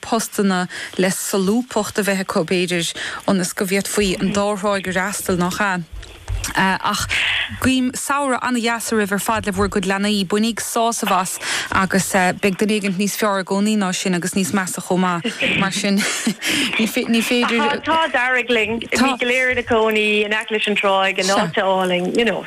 postanna le solúbthacht a bheith acu, b'fhéidir, ionas go bhféadfaí an dá thráigh a fhreastal, nach ea? Ach guím samhradh an-deas oraibh ar fad le bhur gcuid leanaí. Bainigí sásamh as agus beidh duine éigin níos fearr i gcónaí ná sinn agus níos measa chomh maith, mar sin ní féidir. Tá an t-ádh dearg linn. Tá. Bheith go léir inár gcónaí in aice leis an dtráigh in áit álainn, you know.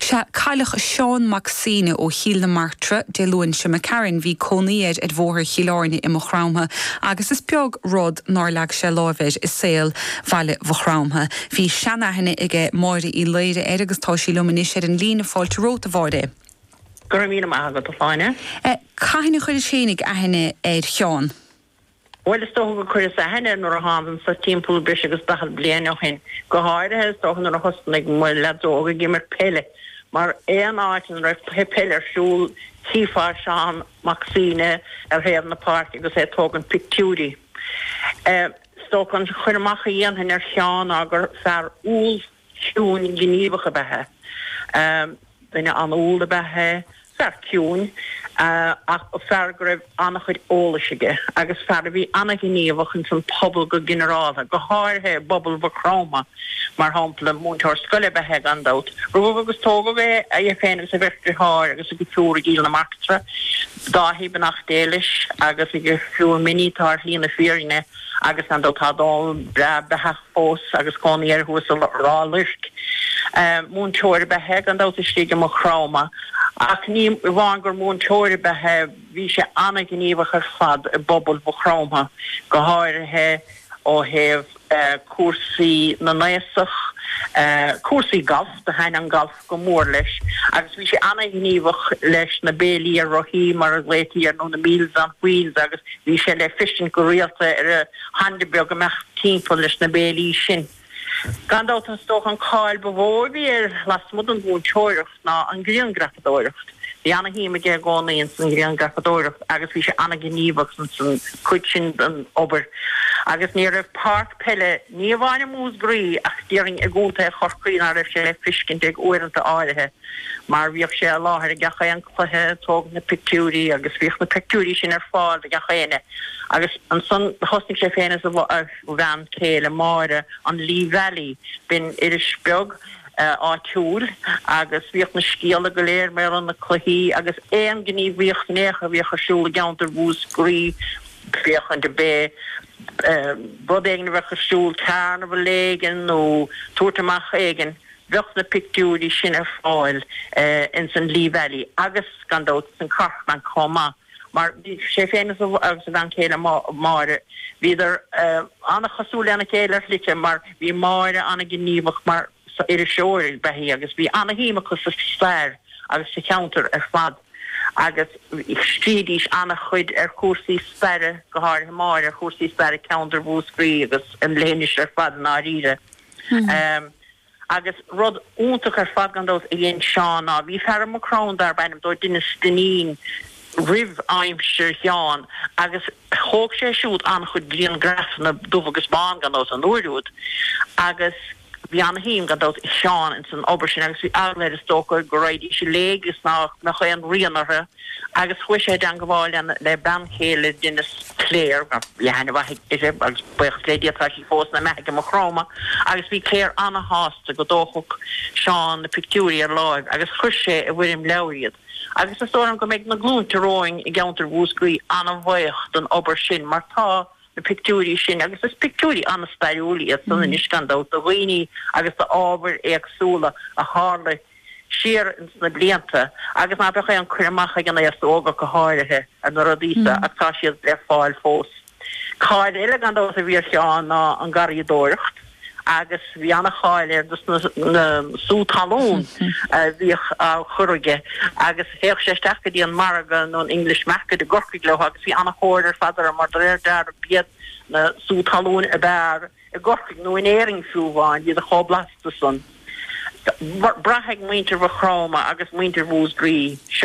Sea, cailleadh Seán Mac Suibhne ó Chill na Martra Dé Luain seo imigh tharainn, bhí cónaí air ar Bhóthar Chill Airne i Maigh Chromtha agus is beag rud nár leag sé láimh air i saol bhaile Mhaigh Chromtha. Bhí seanaithne aige Máire Uí Laoire air agus tá sí liom anois ar an líne. Fáilte romhat, a Mháire. Go raibh míle maith agat, a Shláine. Cathain a chuiris féinig aithne ar Sheán? Bhuel, is dócha gur chuireas aithne air nuair a thánag anso timpeall breis agus daichead bliain ó shin, go háirithe, is dócha, nuair a thosnaigh mo leaid óg ag imirt peile, mar aon áit ina raibh cluiche peile ar siúl, chífeá Seán Mac Suibhne ar thaobh na páirce agus é ag tógaint pictiúirí. Eh, is dócha an cur amach a dhéanfainn ar Sheán ná gur fear umhal ciúin, gníomhach ab ea é, duine an-umhal ab ea é, fear ciúin, ach fear go raibh an-chuid eolais aige agus fear a bhí an-ghníomhach ins an phobal go ginearáltha, go háirithe i bpobal Mhaigh Chromtha, mar shampla. Múinteoir scoile ab ea é, gan dabht. Rugadh agus tógadh é, é féin agus a bheirt dritheáir agus a dheirfiúr i gCill na Martra, Dáithí beannacht Dé leis, agus a dheirfiúr Minnie atá ar shlí na fírinne, agus gan dabht tá Dónall breá beathaithe. fós agus cónaí air thuas i Ráth Luirc. Múinteoir ab ea é, gan dabht, istigh i Maigh Chromtha, ach ní amháin gur mhúinteoir ab ea é, bhí sé an-ghníomhach ar fad i bpobal Mhaigh Chromtha, go háirithe ó thaobh cúrsaí na n-aosach, cúrsaí gailf, do thaitn an galf. go mór leis agus bhí sé an-ghníomhach leis na béilí ar rothaí, mar a ghlaotaí air, nó na Meals on Wheels agus bhí sé le feiscint go rialta ar a Honda beag imeacht timpeall leis na béilí sin. Gan dabht is dócha an cáil ba mhó a bhí air lasmuigh den mhúinteoireacht ná an ghrianghrafadóireacht. Bhí ana-shuim aige i gcónaí ins an ghrianghrafadóireacht agus bhí sé ana-ghníomhach ins an chuid sin den obair agus ní raibh páirc peile, ní amháin i Múscraí ach déarfainn i gContae Chorcaí ná raibh sé le fiscint ag uaireanta áirithe mar bhíodh sé i láthair i gach aon cluiche, tógadh na pictiúirí agus bhíodh na pictiúirí sin ar fáil do gach éinne agus ansan thosnaigh sé féin is a bhean chéile, Máire, an Lee Valley, b'in iris bheag. áitiúil agus bhíodh na scéalta go léir mar gheall ar na cluichí agus aon ghníomhaíocht in aon chor a bhíodh ar siúl i gceantar Mhúscraí, féachaint ar bith, rud éigin a bheadh ar siúl, carnabhal éigin nó tabhairt amach éigin, bheadh na pictiúirí sin ar fáil ins an Lee Valley agus gan dabht ins an Corkman chomh maith. mar bhí sé féin agus a bhean chéile Máire, bhíodar an-chosúil lena chéile ar shlite mar bhí Máire an-ghníomhach mar iriseoir a bheith agus bhí ana-shuim acu sa stair agus sa cheantar ar fad agus scríobhaidís ana-chuid ar chúrsaí staire, go háirithe Máire, ar chúrsaí staire ceantar Mhúscraí agus an leithinis ar fad i ndáiríre. Agus rud iontach ar fad, gan dabht, a dhein Seán ná, bhí fear i Maigh Chromtha darb ainm dó Dennis Dinneen roimh aimsir Sheáin agus thóg sé siúd an-chuid griangraifeanna, dubh agus bán, gan dabht, an uair úd. Agus bhí an-shuim, gan dabht, ag Seán ins an obair sin agus bhí eagla air, is dócha, go raghaidís i léig is nach mbeadh aon rian orthu. agus chuaigh sé i dteangabháil le bean chéile Dennis, Clare, bhí aithne mhaith uirthi agus baochas le Dia tá sí fós ina beathaidh i Maigh Chromtha, agus bhí Clare ana-shásta go dtógfadh Seán na pictiúirí ar láimh agus chuir sé i bhfoirm leabhair iad agus is dóigh liom go mbeidh na glúinte romhainn i gceantar Mhúscraí ana-bhaoch den obair sin mar tá na pictiúirí sin agus is pictiúirí ana-stairiúil iad san anois gan dabht de dhaoine agus d'ábhair éagsúla a tharla i siar ins na blianta agus ná beadh aon cur amach ag an aos óg ach go háirithe ar na rudaí so ach tá siad le fáil fós. Cáil eile gan dabht a bhí ar Sheán ná an garraíodóireacht agus bhí ana-cháil air dos na sú talún a bhíodh á chur aige agus théadh sé isteach go dtí an margadh nó an English Market i gCorcaigh leo agus bhí ana-thóir ar fad orthu mar do réir dealraimh b'iad na sú talún ab fhearr i gCorcaigh nó in Éirinn fiú amháin, iad chomh blasta san. Braithfidh muintir Mhaigh Chromtha agus muintir Mhúscraí, Seán.